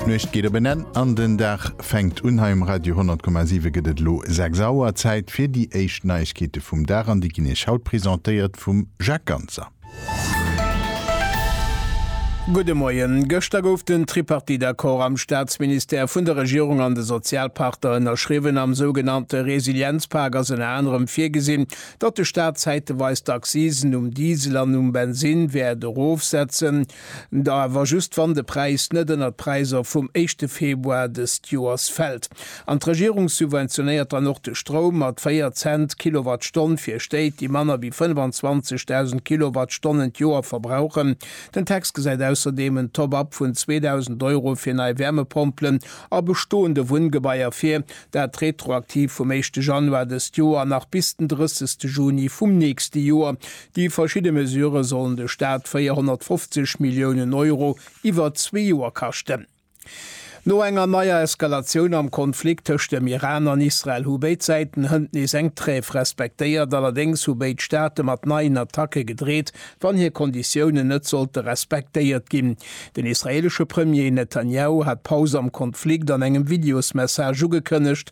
D'Nuecht geet op en Enn an den Dag fänkt un. Hei um Radio 10,7 gëtt et elo 6 Auer. Zäit fir déi éischt Neiegkeete vum Dag an déi ginn Iech haut presentéiert vum Jacques Ganser. Gudde Moien. Gëschter gouf den Tripartite-Accord am Staatsministère vun der Regierung an de Sozialpartner ënnerschriwwen. Am sougenannte Resilienzpak ass ënner anerem virgesinn, datt de Staat zäiteweis d'Accisen um Diesel an um Bensinn wäert erofsetzen. Da awer just wann de Präis net ënner d'Präiser vum éischte Februar dëst Joers fält. An d'Regierung subventionéiert dann och de Stroum mat 4 Cent d'Kilowattstonn fir Stéit, déi manner wéi 25.000 Kilowattstonnen d'Joer verbrauchen. Den Text gesäit ausserdeem en Top-up vun 2.000 Euro fir nei Wärmepompelen a bestoende Wunngebaier vir, dat retroaktiv vum éischte Januar dëst Joer nach bis den 30 Juni vum nächste Joer. Déi verschidde Mesurë sollen de Staat 450 Milliounen Euro iwwer zwee Joer kaschten. No enger neier Eskalatioun am Konflikt tëscht dem Iran an Israel hu béid Säiten hënt nees eng Trêve respektéiert. Allerdéngs hu béid Staate mat neien Attacke gedreet, wann hir Konditiounen net sollte respektéiert ginn. Den israeelesche Premier Netanjahu hat d'Paus am Konflikt an engem Videosmessage ugekënnegt.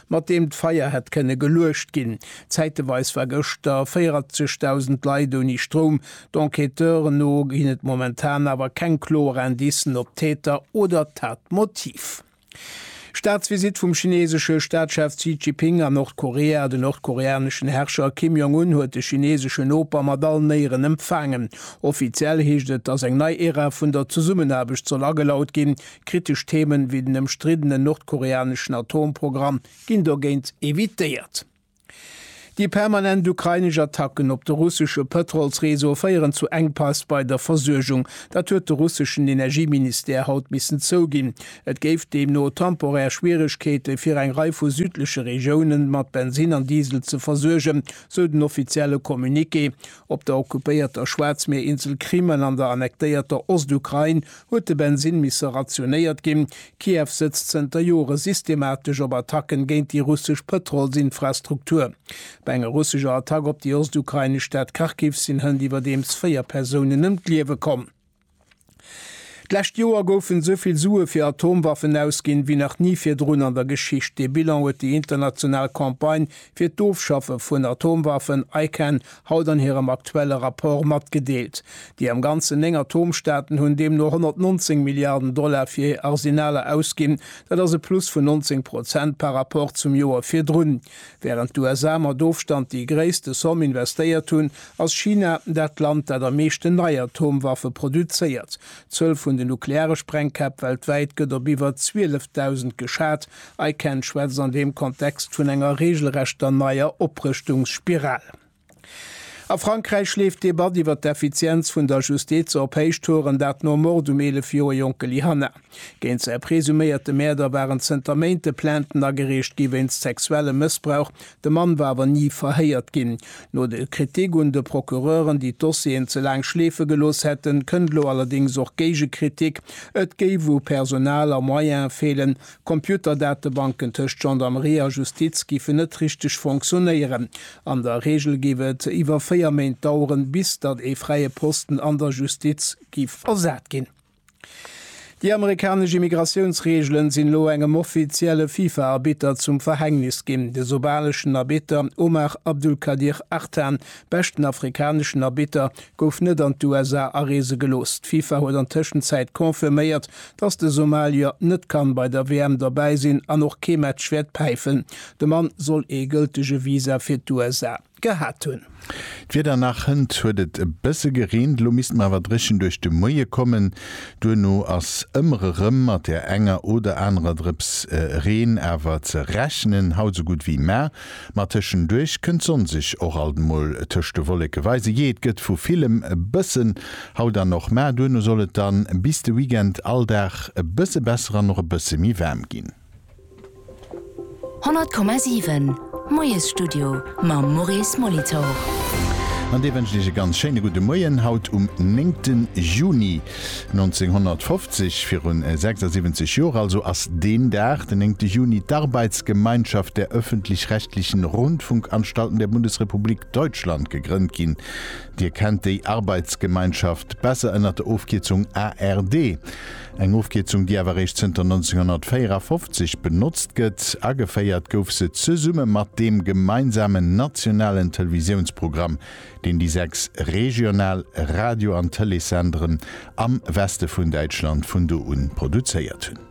mat deem d'Feier hätt kënne geluecht ginn. Zäiteweis war gëschter 40.000 Leit ouni Stroum. D'Enquêteuren no ginn et momentan awer keng kloer Indicen op d'Täter oder d'Tatmotiv. Staatsvisitt vum chineesesche Staatschef Xi Jiping a Nordkorea Den nordkoreaneschen Herrscher Kim Jong Un huet de chineeseschen Noper mat allen Éieren empfaangen. Offiziell heescht et, datt eng nei Ära vun der Zesummenaarbecht soll agelaut ginn. Kritesch Themen wéi den ëmstriddenen nordkoreaneschen Atomprogramm ginn dogéint evitéiert. Déi permanent ukrainesch Attacken op de russesche Pëtrolsreseau féieren zu Enkpass bei der Versuergung. Dat huet de russeschen Energieministère haut missen zouginn. Et géif deemno temporär Schwieregkeete fir eng Rei vu südleche Regiounen mat Bensin an Diesel ze versuergen, sou den offizielle Communiqué. Op der okkupéierter Schwaarzmierinsel Krimen an der annektéierter Ostukrain huet de Bensinn misse rationéiert ginn. Kiew sëtzt zënter Jore systematesch op Attacken géint déi russesch Pëtrolsinfrastruktur. Bei enger russescher Attack op déi ostukrainesch Stad Kharkiv sinn hënt iwwerdeems véier Persounen ëm d'Liewe komm. D'lescht Joer goufen esou vill Sue fir Atomwaffen ausginn, wéi nach ni virdrun an der Geschicht. Dee Bilan huet déi international Campagne fir d'Ofschaffe vun Atomwaffen, ICAN, haut an hirem aktuelle Rapport matgedeelt. Déi am Ganzen néng Atomstaaten hunn deemno 119 Milliarden Dollar fir hir Arsenaler ausginn. Dat ass e Plus vun 19 Prozent par Rapport zum Joer virdrun. Wärend d'USA mat Ofstand déi gréisste Somm investéiert hunn, ass China dat Land, dat am meeschten nei Atomwaffe produzéiert. D'Zuel vun de nukleare Sprengkäpp weltwäit gëtt op iwwer 12.000 geschat. ICAN schwätzt an deem Kontext vun enger reegelrechter neier Oprëschtungsspiral. A Frankräich leeft d'Debatt iwwer d'Effizienz vun der Justiz op Héichtouren, dat nom Mord um 11 Joer jonke Lyhanna. Géint säi presuméierte Mäerder waren zënter Méinte Plainten agereecht gi wéinst sexuellem Mëssbrauch, de Mann war awer ni verhéiert ginn. No de Kritik un de Procureuren, déi d'Dossieren ze laang schleefe gelooss hätten, kënnt elo allerdéngs och Géigekritik, et géif u Personal a Moyene feelen, Computerdatebanken tëscht Gendarmerie a Justiz géifen net richteg fonctionnéieren. An der Reegel géif et iwwer véier Méint daueren, bis datt ee fräie Posten an der Justiz géif besat ginn. Déi amerikanesch Immigratiounsreegelen sinn elo engem offizielle FIFA-Arbitter zum Verhängnis ginn. De somaleschen Arbitter Omar Abdulkadir Artan, beschten afrikaneschen Arbitter, gouf net an d'USA areese gelooss. D'FIFA huet an Tëschenzäit confirméiert, dass de Somalier net kann bei der WM derbäi sinn an och kee Match wäert päifen. De Mann soll ee gëltege Visa fir d'USA gehat hunn. D'Wieder nach, hënt huet et e bësse gereent, elo misst mer awer dréchen duerch de Moie kommen. Duerno ass ëmmer erëm mat der enger oder anerer Drëps Reen awer ze rechnen, haut esou gutt wéi mar. Ma tëschenduerch kënnt d'Sonn sech och alt emol tëscht de Wolleke weise. Jee, et gëtt vu villem e bëssen, haut an och mar. Duerno soll et dann bis de Weekend all Dag e bësse besser an och e bësse méi waarm ginn. 100,7 Moiesstudio mam Maurice Molitor. An dee wënscht Iech e ganz schéine gudde Moien haut um 9 Juni. 1950, virun 76 Joer also, ass deen Dag, den 9. Juni, d'Arbeitsgemeinschaft der öffentlich-rechtlichen Rundfunkanstalten der Bundesrepublik Deutschland gegrënnt ginn. Dir kennt déi Arbeitsgemeinschaft besser ënnert der Ofkierzung ARD. Eng Ofkierzung, déi awer eréischt zënter 1954 benotzt gëtt. Ageféiert gouf se zesumme mat deem gemeinsamen nationalen Televisiounsprogramm deen déi sechs regional Radio an Tëleessenderen am Weste vun Däitschland vun do un produzéiert hunn.